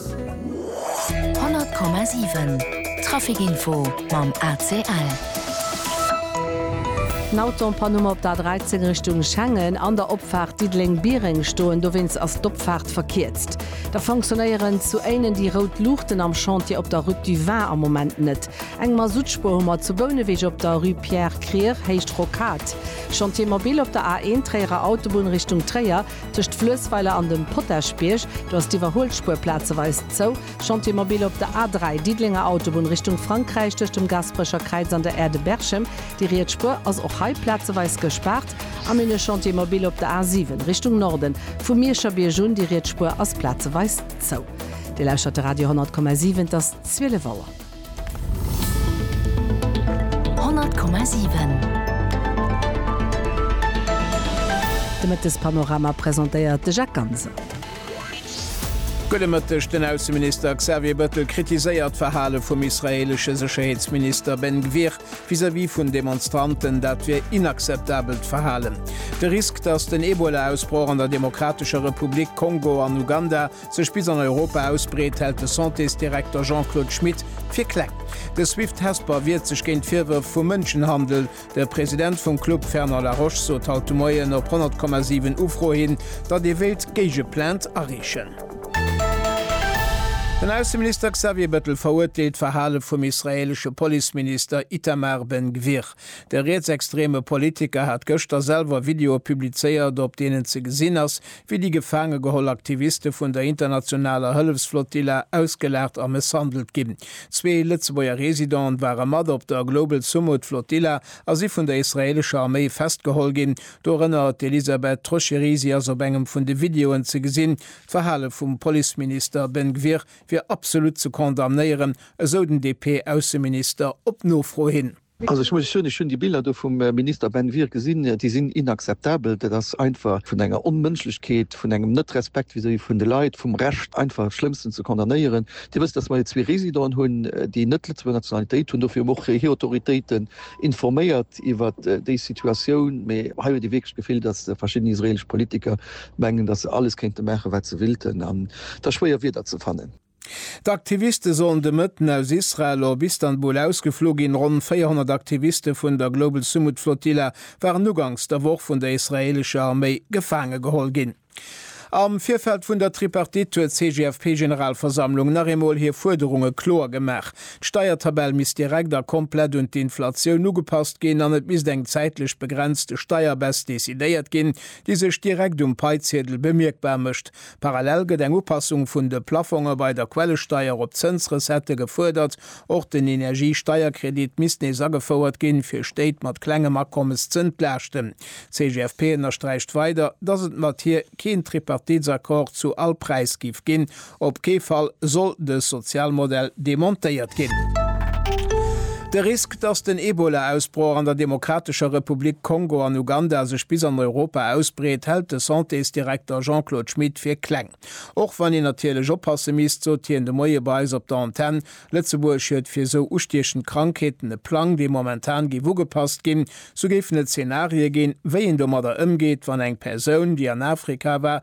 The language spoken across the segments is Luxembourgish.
100 Komma 7 Trafic Info mam ACL. Nautonpanummer op der A13 Richtung Schengen an der Opfaart Diddeleng-Biereng stoen, dowéinst ass d'Opfaart verkierzt. Da fonctionnéieren zu Éinen déi rout Luuchten am Chantier op der Route du Vin am Moment net. Eng Masuttspuer hu mer zu Bouneweg op der Rue Pierre Krier, Héicht Rocade. Chantier mobile op der A1 Tréierer Autobunn Richtung Tréier. Tëscht Fluessweiler an dem Potaschbierg, do ass d'Iwwerhuelspuer plazeweis zou. Chantier mobile op der A3, Diddelénger Autobunn Richtung Frankräich, tëscht dem Gasperecher Kräiz an der Aire de Berchem. Déi riets Spuer ass och hei plazeweis gespaart. An een e Chantier mobile op der A7, Richtung Norden, vum Mierscher Bierg un. Déi riets Spuer ass plazeweis zou. Dir lauschtert de Radio 100,7, et ass 12 Auer. 100,7 De Mëttespanorama presentéiert de Jacques Ganser. Gudde Mëtteg, Den Ausseminister Xavier Bëttel kritiséiert d'Verhale vum israeelesche Sécherheetsminister Ben Gvir vis-à-vis vun Demonstranten, dat wier inakzeptabelt Verhalen. De Risk, datt den Ebola-Ausbroch an der Demokratescher Republik Kongo an Uganda sech bis an Europa ausbreet, hält de Santésdirekter Jean-Claude Schmit fir kleng. De Swift Hesper wiert sech géint d'Virwërf vu Mënschenhandel. De President vum Club Fernand Laroche sot haut de Moien op 100,7 Ufro hin, datt ee wéilt Géigeplainte areechen. Den Ausseminister Xavier Bettel verurteelt d'Verhale vum israeelesche Policeminister Itamar Ben Gvir. De rietsextreme Politiker hat gëschter selwer Videoe publizéiert, op deenen ze gesinn ass, wéi déi gefaange geholl Aktiviste vun der internationaler Hëllefsflottilla ausgelaacht a mësshandelt ginn. Zwee Lëtzebuerger Residenten ware mat op der Global Sumud Flotilla a si vun der israeelescher Arméi festgeholl ginn, dorënner d'Elisabeth Troscheri. Si ass op engem vun de Videoen ze gesinn. D'Verhale vum Policeminister Ben Gvir wier absolut ze condamnéieren, esou den DP-Ausseminister op Nofro hin. Also ech muss soen, ech hunn déi Biller do vum Minister Ben Wier gesinn, déi sinn inakzeptabel. Dat ass einfach vun enger Onmënschlechkeet, vun engem Net-Respekt vis-à-vis vun de Leit, vum Recht einfach Schlëmmsten ze condamnéieren. Dir wësst, datt mer hei zwee Residenten hunn, déi net d'Lëtzebuerger Nationalitéit hunn. Dofir hu mer och hir Autoritéiten informéiert iwwer déi Situatioun. Mee hei huet ee wierklech d'Gefill, datt verschidden israeelesch Politiker mengen, datt se alles kéinte maachen, wat se willten. An et ass schwéier Wierder ze fannen. D'Aktiviste sollen de Mëtten aus Israel op Istanbul ausgeflu ginn. Ronn 400 Aktiviste vun der Global Sumud Flotilla waren uganks der Woch vun der israeelescher Arméi gefaange geholl ginn. Am Virfeld vun der Tripartite huet d'CGFP-Generalversammlung nach eemol hir Fuerderunge kloer gemaach. D'Steiertabell misst direkt a komplett un d'Inflatioun ugepasst ginn an et misst eng zäitlech begrenzte Steierbess decidéiert ginn, déi sech direkt um Paiziedel bemierkbar mécht. Parallel gëtt eng Upassung vun de Plaffonge bei der Quellesteier op d'Zënsrecettë gefuerdert. Och den Energiesteierkredit misst nees agefouert ginn, fir Stéit mat klengem Akommes z'entlaaschten. D'CGFP ënnersträicht weider, dass et mat hir keen Tripartitsaccord zu all Präis géif ginn. Op kee Fall soll de Sozialmodell demontéiert ginn. De Risk, dass den Ebola-Ausbroch an der Demokratescher Republik Kongo an Uganda sech bis an Europa ausbreet, hält de Santésdirekter Jean-Claude Schmit fir kleng. Och wann een natierlech oppasse misst, sot hien de Moie bei eis op der Antenn. Lëtzebuerg huet fir esou ustiechend Krankheeten e Plang, dee momentan géif ugepasst ginn. Sou géifen et Zenarie ginn, wéi een domadder ëmgeet, wann eng Persoun, déi an Afrika war,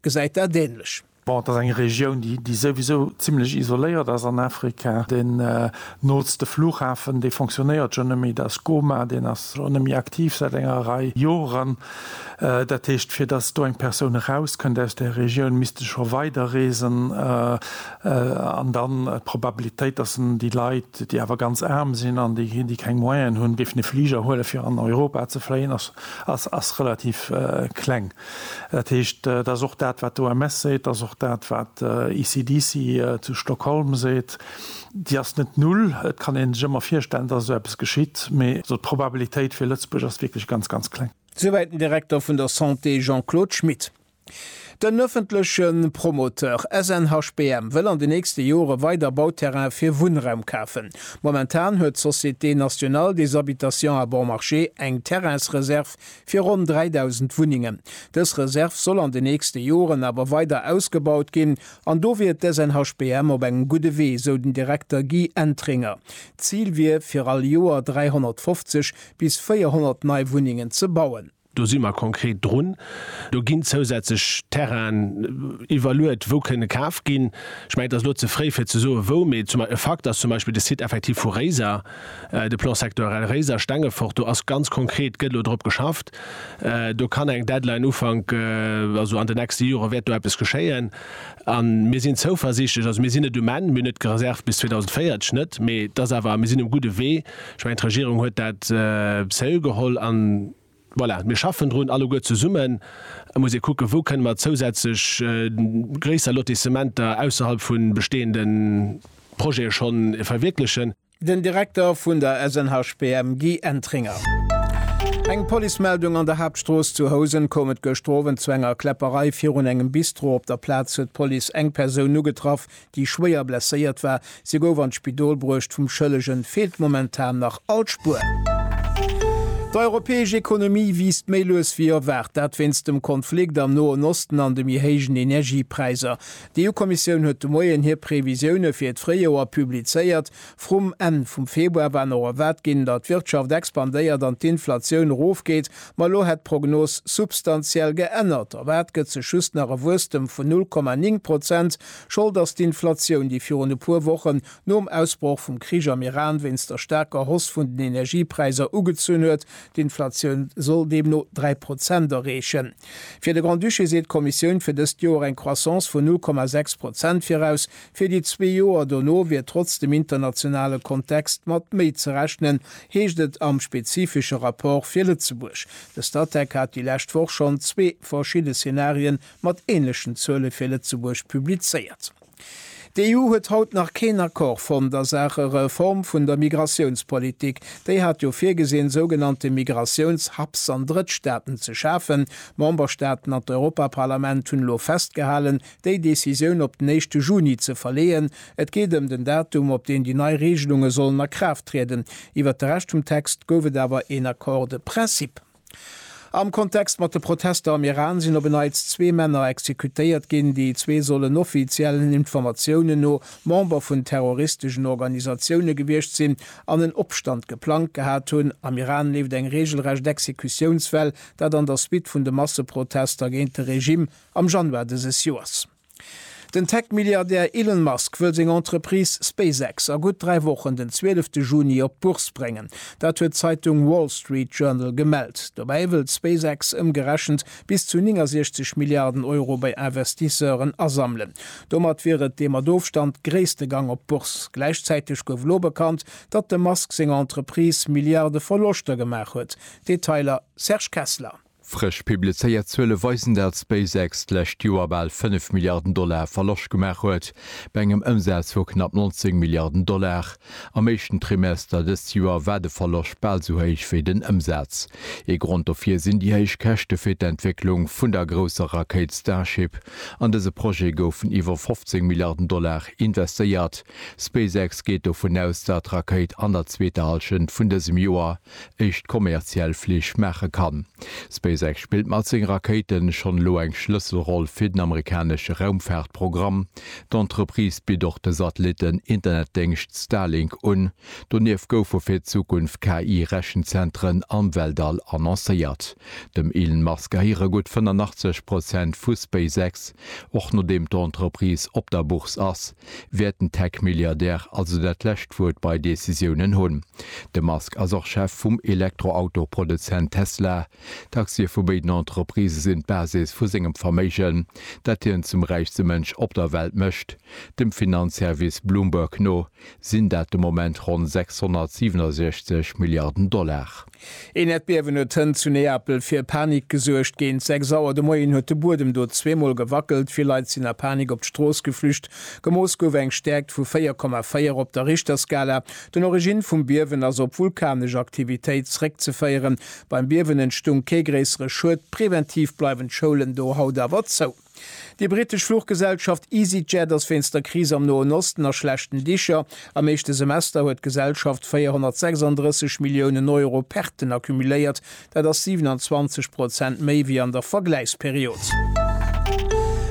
Gesäit dat änlech. Bon, et ass eng Regioun, déi souwisou zimlech isoléiert ass an Afrika. Deen nootste Flughafen, dee fonctionnéiert schonn net méi, dat ass Goma. Deen ass och net méi aktiv säit enger Rei Joren. Dat heescht, fir datt do eng Persoun erauskënnt aus där Regioun, misst e scho weider reesen. An dann d'Probabilitéit, datt en déi Leit, déi awer ganz aarm sinn an déi keng Moyenen hunn, géifen e Fliger huelen, fir an Europa ze fléien, ass relativ kleng. Dat heescht, dat ass och dat, wat d'OMS seet, dat ass och dat, wat ECDC zu Stockholm seet, déi ass net null. Et kann ee sech ëmmer virstellen, dass esou eppes geschitt, mee esou d'Probabilitéit fir Lëtzebuerg ass wierklech ganz, ganz kleng. Souwäit den Direkter vun der Santé Jean-Claude Schmit. Den ëffentleche Promoteur SNHBM wëll an den nächste Jore weider Bauterraine fir Wunnraum kafen. Momentan huet d'Société Nationale des Habitations à Bon Marché eng Terrainsreserv fir ronn 3.000 Wunnengen. Dës Reserv soll an den nächste Joren awer weider ausgebaut ginn an do wier d'SNHBM op engem gudde Wee, esou den Direkter Guy Entringer. D'Zil wier fir all Joer 350 bis 400 nei Wunnengen ze bauen. Do si mer konkret drun. Do ginn zousätzlech Terrainen iwwerluet, wou kënne kaf ginn. Ech mengen, et ass elo ze fréi fir ze soe wou, mee e Fakt ass zum Beispill de Site effektiv vu Réiser, De Plan sectoirel Réiser, Stengefort, do ass ganz konkret, gëtt elo drop geschafft. Do kann eng Deadline Ufank, also an den nächste Jore wäert do eppes geschéien. A mir sinn zouversiichtlech, also mir sinn net um Enn, mir hunn net gereservt bis 2040 net, mee et ass awer, mir sinn um gudde Wee. Ech mengen, d'Regierung huet dat sérieux geholl an. Voilà, mir schaffen drun alleguer zesummen. Et muss ee kucken, wou kënne mer zousätzlech gréisser Lotissementer ausserhalb vu bestehende Projete schonn verwierklechen. Den Direkter vun der SNHPM Guy Entringer. Eng Policemeldung an der Haaptstrooss zu Housen koum et gëschter Owend zu enger Kläpperei virun engem Bistro. Op der Plaz huet d'Police eng Persoun ugetraff, déi schwéier blesséiert war. Si gouf an d'Spidol bruecht, vum Schëllege feelt momentan nach all Spuer. D'europäesch Ekonomie wiisst méi lues wéi erwaart, dat wéinst dem Konflikt am Noen Osten an de méi héijen Energiepräisser. D'EU-Kommissioun huet de Moien hir Previsioune fir d'Fréijoer publizéiert. Vrum Enn vum Februar war nach erwaart ginn, datt d'Wirtschaft expandéiert an d'Inflatioun erofgeet, ma elo hätt d'Prognos substantiell geännert. Erwaart gëtt sech just nach e Wuesstem vun 0,9 Prozent. Schold ass d'Inflatioun, déi virun e puer Wochen, nom Ausbroch vum Krich am Iran, wéinst der staarker Hoss vun den Energiepräisser ugezunn huet. D'Inflatioun soll deemno dräi Prozent erreechen. Fir de Grand-Duché seet d'Kommissioun fir dëst Joer eng Croissance vun null Komma sechs Prozent viraus. Fir déi zwee Joer dono wier trotz dem internationale Kontext mat méi ze rechnen, heescht et am spezifesche Rapport fir Lëtzebuerg. De Statec hat déi lescht Woch schonn zwee verschidde Szenarien mat änlechen Zuele fir Lëtzebuerg publizéiert. D'EU huet haut nach keen Accord fonnt a Saache Reform vun der Migratiounspolitik. Déi hat jo virgesinn, sougenannte Migratiouns-Hubs an Drëttstaaten ze schafen. D'Memberstaaten an d'Europaparlament hunn elo festgehalen, déi Decisioun op den éischte Juni ze verleeën. Et geet ëm den Datum, op deen déi nei Reegelunge sollen a Kraaft trieden. Iwwert de Rescht vum Text gouf et awer een Accord de principe. Am Kontext mat de Protester am Iran sinn op en Neits zwee Männer exekutéiert ginn. Déi zwee sollen offiziellen Informatiounen no Member vun terroristeschen Organisatioune gewiescht sinn an en Opstand geplangt gehat hunn. Am Iran leeft eng reegelrecht Exekutiounswell, dat an der Suite vun de Masseprotester géint de Regimm am Januar dëses Joers. Den Tech-Milliardär Elon Musk wëll seng Entreprise SpaceX a gutt dräi Wochen, den zwielefte Juni, op d'Bourse bréngen. Dat huet d'Zeitung Wall Street Journal gemellt. Dobäi wëllt SpaceX ëmgerechent bis zu 69 Milliarden Euro bei Investisseuren asammelen. Domat wier et dee mat Ofstand gréisste Gang op d'Bourse. Gläichzäiteg gouf elo bekannt, datt dem Musk seng Entreprise Milliarde Verloschter gemaach huet. Detailer Serge Kessler. Frësch publizéiert Zuele weisen, dat SpaceX d'lescht Joer bal 5 Milliarden Dollar Verloscht gemaach huet, bei engem Ëmsaz vu knapp 19 Milliarden Dollar. Am éischten Trimester dëst Joer war de Verloscht bal esou héich wéi den Ëmsaz. Ee Grond dofir sinn déi héich Käschte fir d'Entwécklung vun der grousser Rakéit Starship. An dëse Projet goufen iwwer 15 Milliarden Dollar investéiert. SpaceX geet dovun aus, dat d'Rakéit an der zweeter Hallschent vun dësem Joer éischt kommerziell Flich maache kann. SpaceX spillt mat senge Rakéiten schonn elo eng Schlësselroll fir den amerikanesche Raumfaartprogramm. D'Entreprise bitt och de Satellitten-Internetdéngscht Starlink un. Donieft goufe fir d'Zukunft KI-Rechenzentren am Weltall annoncéiert. Dem Elon Musk gehéiere gutt 85 Prozent vu SpaceX. Och nodeem d'Entreprise op der Bourse ass, Wäerten Tech-Milliardäre also dat lescht Wuert bei Decisiounen hunn? De Musk ass och Chef vum Elektroauto-Produzent Tesla. D'Aktie vu béiden Entreprisë sinn d'Basis vu sengem Verméigen, dat hien zum räichste Mënsch op der Welt mécht. Dem Finanzservice Bloomberg no sinn dat de Moment ronn 667 Milliarden Dollar. Een Äerdbiewen huet hënt zu Neapel fir Panik gesuergt. Géint 6 Auer de Moien huet de Buedem do zweemol gewackelt. Vill Leit sinn a Panik op d'Strooss geflücht. Gemooss gouf eng Stäerkt vu 4,4 op der Richterskala. Den Origine vum Biewen ass op vulkanesch Aktivitéit zeréckzeféieren. Beim Biewen entstung kee gréissere Schued. Preventiv bleiwen d'Schoulen do haut awer zou. Déi brittesch Fluchgesellschaft EasyJet ass wéinst der Kris am Noen Osten a schlechten Dicher. Am éischte Semester huet d'Gesellschaft 436 Milliounen Euro Perten accumuléiert, dat ass 27 Prozent méi wéi an der Vergläichsperiod.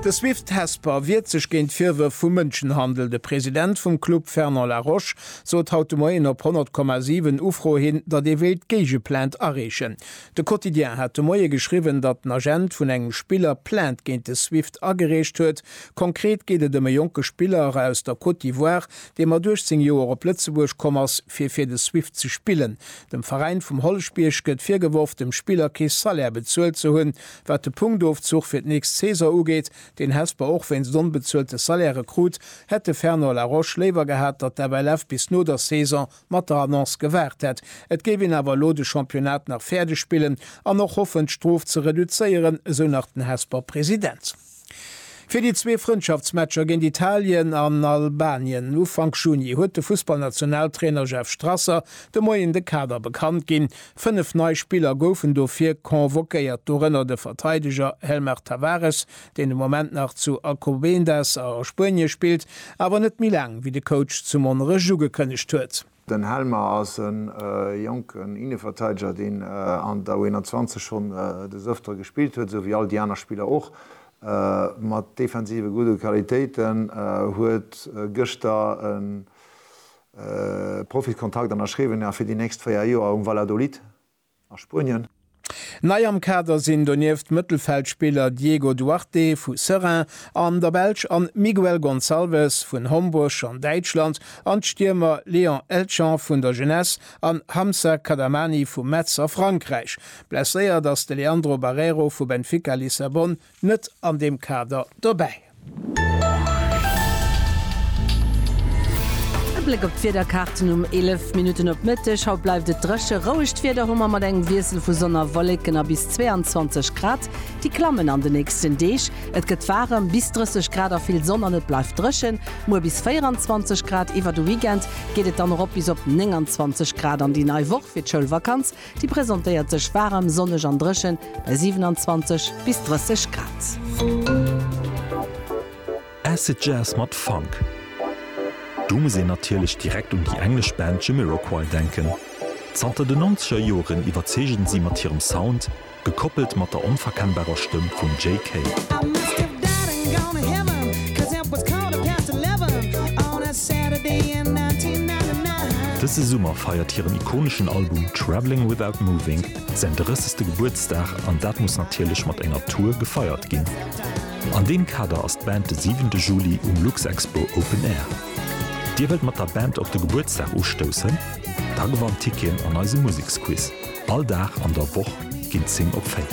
De Swift Hesper wiert sech géint d'Virwërf vu Mënschenhandel. De President vum Club Fernand Laroche sot haut de Moien op 100,7 Ufro hin, datt ee wéilt d'Géigeplainte areechen. De Quotidien hat de Moie geschriwwen, datt en Agent vun engem Spiller Plainte géint de Swift agereecht huet. Konkret geet et ëm e jonke Spiller aus der Côte d'Ivoire, dee mat 18 Joer op Lëtzebuerg komm ass, fir fir de Swift ze spillen. Dem Veräin vum Holleschbierg gëtt virgeworf, dem Spiller kee Salaire bezuelt ze hunn. Wat de Punktofzuch fir d'nächst Saison ugeet, deen Hesper och wéinst onbezuelte Salairë krut, hätt de Fernand Laroche léiwer gehat, datt d'FLF bis no der Saison mat der Annonce gewaart hätt, et géif een awer elo de Championnat nach fäerdeg spillen an och hoffen, d'Strof ze reduzéieren, esou nach den Hesper President. Fir déi zwee Frëndschaftsmatcher géint Italien an Albanien Ufank Juni huet de Fussballnationaltrainer Jeff Strasser de Moien de Kader bekannt ginn. Fënnef nei Spiller goufen dofir convoquéiert, dorënner de Verteideger Helmar Tavares, deen de Moment nach zu Alcobendas a Spuenie spillt, awer net méi laang wéi de Coach zu Monnerech ugekënnegt huet. Den Helmer ass e jonken Inneverteideger, deen an der U21 schonn des Öfteren gespillt huet, esou wéi all déi aner Spiller och. Mat defensive gudde Qualitéiten huet gëschter e Profiskontrakt ënnerschriwwen, fir déi nächst 4 Joer um Valladolid. a Spuenien. Nei am Kader sinn donieft d'Mëttelfeldspiller Diego Duarte vu Seraing an der Belsch an Miguel Gonçalves vun Homburg an Däitschland an d'Stiermer Léon Elchan vun der Jeunesse an Hamza Kadamani vu Metz a Frankräich. Blesséiert ass de Leandro Barreiro vu Benfica Lissabon. net an deem Kader dobäi. E Bléck op d'Wiederkaarten um 11 Minutten op Mëtteg. Haut bleift et dréche. Rouegt Wieder hu mer mat engem Wiessel vu Sonn a Wolleken a bis 22 Grad. Déi klammen an de nächsten Deeg. Et gëtt waarem, bis 30 Grad a vill Sonn an et bleift dréchen. Muer bis 24 Grad. Iwwer de Weekend geet et dann erop bis op 29 Grad an déi nei Woch fir d'Schoulvakanz Déi presentéiert sech waarem, sonneg an dréchen bei 27 bis 30 Grad. Acid Jazz mat Funk. Do muss een natierlech direkt un déi englesch Band Jamiroquai denken. Zanter den Nonzeger Joren iwwerzeegen si mat hirem Sound, Gekoppelt mat der onverkennbarer Stëmm vum JK. Dëse Summer feiert hiren ikoneschen Album Travelling Without Moving säin drëssegste Gebuertsdag an dat muss natierlech mat enger Tour gefeiert ginn. An deem Kader ass d'Band de siwente Juli um Luxexpo Open Air. Dir wëllt mat der Band op de Gebuertsdag ustoussen? Da gewannt Tickien an eise Museksquiz. All Dag an der Woch ginn 10 op 4.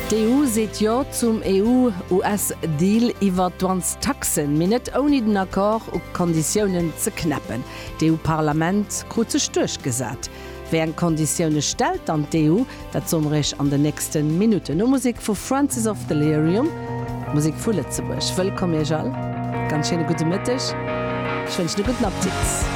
D'EU seet Jo zum EU-US-Deal iwwer Douanestaxen, mee net ouni den Accord u Konditiounen ze knäppen. D'EU-Parlament krut sech duerchgesat. Wéi eng Konditioune stellt dann d'EU? Dat soe mer Iech an den nächste Minutten, no Musek vu Francis of Delirium, Musek vu Lëtzebuerg. Wëllkomm Iech all, ganz schéine gudde Mëtteg, ech wënschen e gudden Appetit.